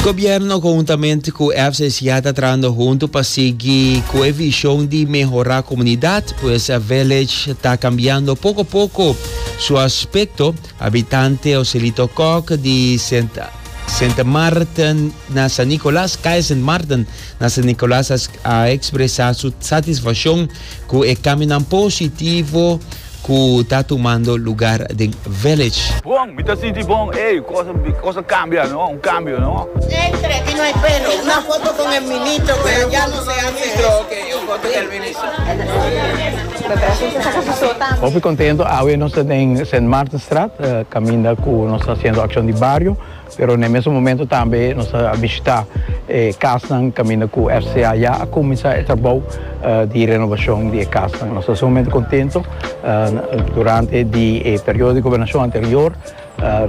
Gobierno conjuntamente cu FCCA ta trabando hunto pa sigui cu e vision di mehora comunidad. Pues Village ta cambiando poco a poco su aspecto. Habitante Joselito Kok di Sint Maarten na San Nicolas, Calle Sint Maarten na San Nicolas, a expresa su satisfaccion cu e cambionan positivo. ku ta tumando lugar den Village. Bon, mi ta sinti bon, ey, cosa, cosa cambia, no, un cambio, no. Entre y no hay pelo, una foto con el ministro pero ya no se hace eso. Ok, un foto del ministro. Me parece usted saca su so tambe. Hopi contento, awe nos ta den Sint Maartenstraat, caminda cu nos ta haciendo accion di bario. Pero n'e mesun momento tambe nos a bishitá e kasnan kaminda ku RCA ya a kuminsá e trabou di renobashon di e kasnan. Nos ta sumamente kontento. Durante di e periodo di gobernashon anterior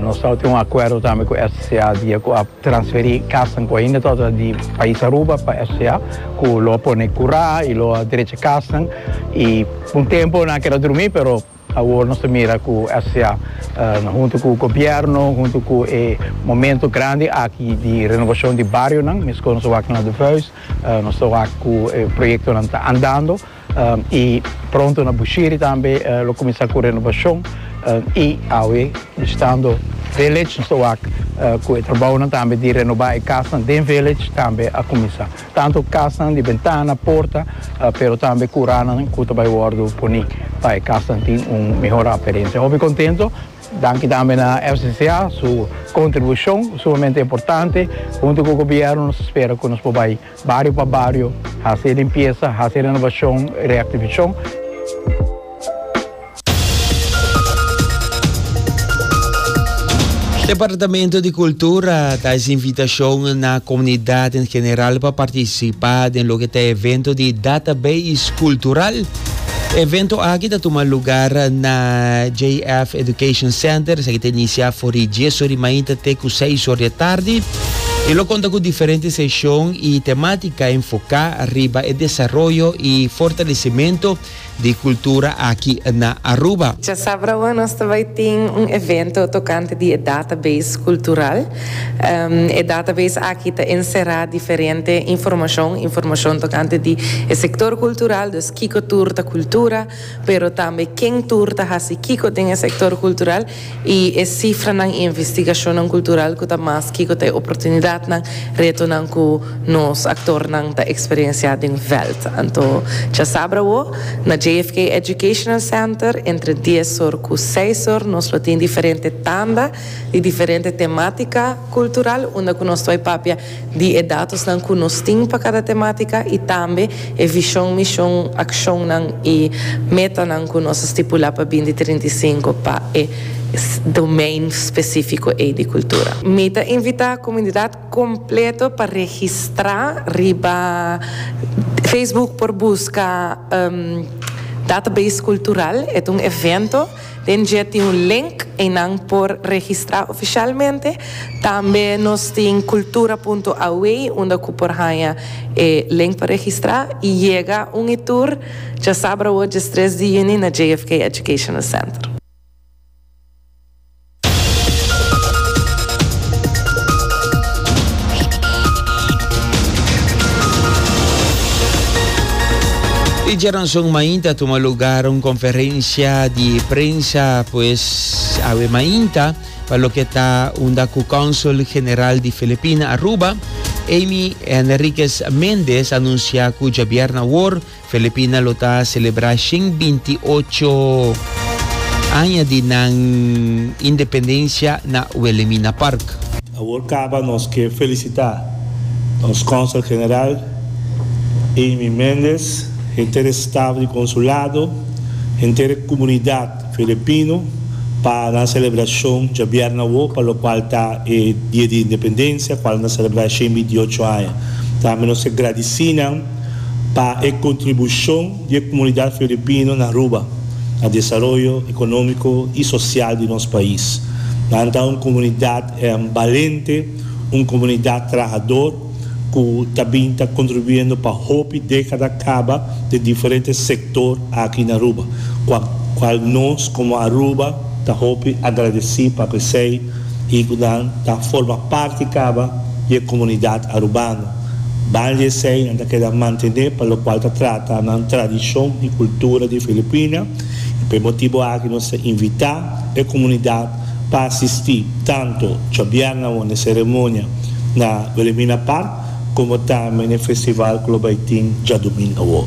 nos tabata tin un akuerdo tambe ku RCA dia ku a transferí kasnan ku ainda tabata di pais Aruba pa RCA ku lo a pone kurá i lo a derecha kasnan i pa un tempu nan a keda drumí pero. Awor nos ta mira cu SCA hunto cu gobierno, hunto cu e momento grandi aki di renovacion di barionan, mescor nos a wak na de vuis, nos ta wak cu e proyectonan ta andando y pronto na Bushiri tambe lo cuminsa cu renovacion y awe bishitando Village nos ta wak cu e trabaonan tambe di renoba e casnan den Village tambe a cuminsa. Tantu kasnan di bentana, porta, pero tambe kuranan ku ta bai wòrdu poni pa e kasnan tin un mihor aparensia. Hopi kontento. Danki tambe na FCCA su kontribushon sumamente importante. Huntu ku gobièrnu nos ta spera ku nos por bai bario pa bario hasi e limpiesa, hasi e renobashon, reaktivashon. Departamento di Cultura ta haci invitacion na comunidad en general pa participa den loke ta evento di Database Cultural. Evento aki ta tuma lugar na JF Education Center, esaki ta inicia for di dies or di mainta te cu seis or di atardi. Y lo conta cu diferente sesion y tematica enfoca riba e desaroyo y fortalecimento di cultura aki na Aruba. Dja sabrawa nos ta bai tin un evento tocante di e database cultural. E database aki ta encera diferente informacion, informacion tocante di e sector cultural, dus kico tur ta cultura, pero tambe ken tur ta haci kico den e sector cultural. I e sifranan i investigashonnan kultural ku ta mas kiko ta e oportunidatnan, retonan ku nos aktornan ta eksperiensiá den vèlt. Anto djasabra awo, na JFK Educational Center, entre dies or ku seis or nos lo tin diferente tanda di diferente temátika kultural unda ku nos ta bai papia di e datosnan ku nos tin pa kada temátika i tambe e vishon, mishon, akshonnan i metanan ku nos a stipulá pa binti trinta i sinku pa e domein spesífiko ei di kultura. Mi ta invitá komunidat kompleto pa registrá riba Facebook por buska Database Cultural. E ta un evento. Den dje tin un link einan por registra oficialmente. Tambe nos tin cultura punto awe unda cu por haya e link pa registra y yega un y tur dja sabra awor djes tres di juni na JFK Educational Center. E djaranson mainta a tuma lugar un conferencia di prensa pues awe mainta pa loke ta unda cu Consul General di Filipina Aruba, Amy Henriquez Mendez anuncia cu djabièrnè awor Filipina lo ta selebrá shen binti ocho aña di nan independensia na Wilhelmina Park. Awor caba nos ke felicita nos Consel General Amy Mendez, henter e staf di Consulado, henter e comunidad Filipino pa nan celebracion djabièrna awor pa lo cual ta e Dia di Independencia cual nos ta celebra shen binti ocho aña. Tambe nos ke gradici nan. pa e kontribushon di e komunidat filipino na Aruba na desaroyo ekonómiko i sosial di nos pais. Nan ta un komunidat balente, un komunidat trahador ku ta bin ta kontribuendo pa hopi dékada kaba den diferente sektor aki na Aruba, kual nos komo Aruba ta hopi agradesí pa esei i ku nan ta forma parti kaba di e komunidat arubano. Banda esei nan ta keda mantené pa lokual ta trata nan tradishon i kultura di Filipina i pa e motibu aki nos ta invitá e komunidat pa asistí tantu djobièrna awor na e seremonia na Wilhelmina Park komo tambe na e festival ku lo bai tin djadumingu awor.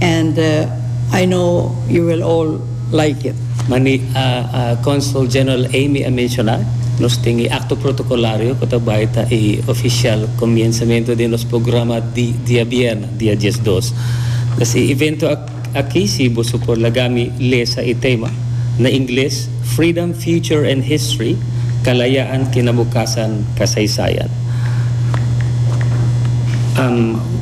and I know you will all like it. Mani Consul General Amy a menciona, nos tin e acto protocolario cu ta bay ta e oficial comienzamento den nos programa di diabierna, dia diesdos. Pues e evento aki, si boso por laga mi lesa e tema, na Ingles, Freedom, Future and History, Kalayahan ke na bo kasahan, Kasaysayan.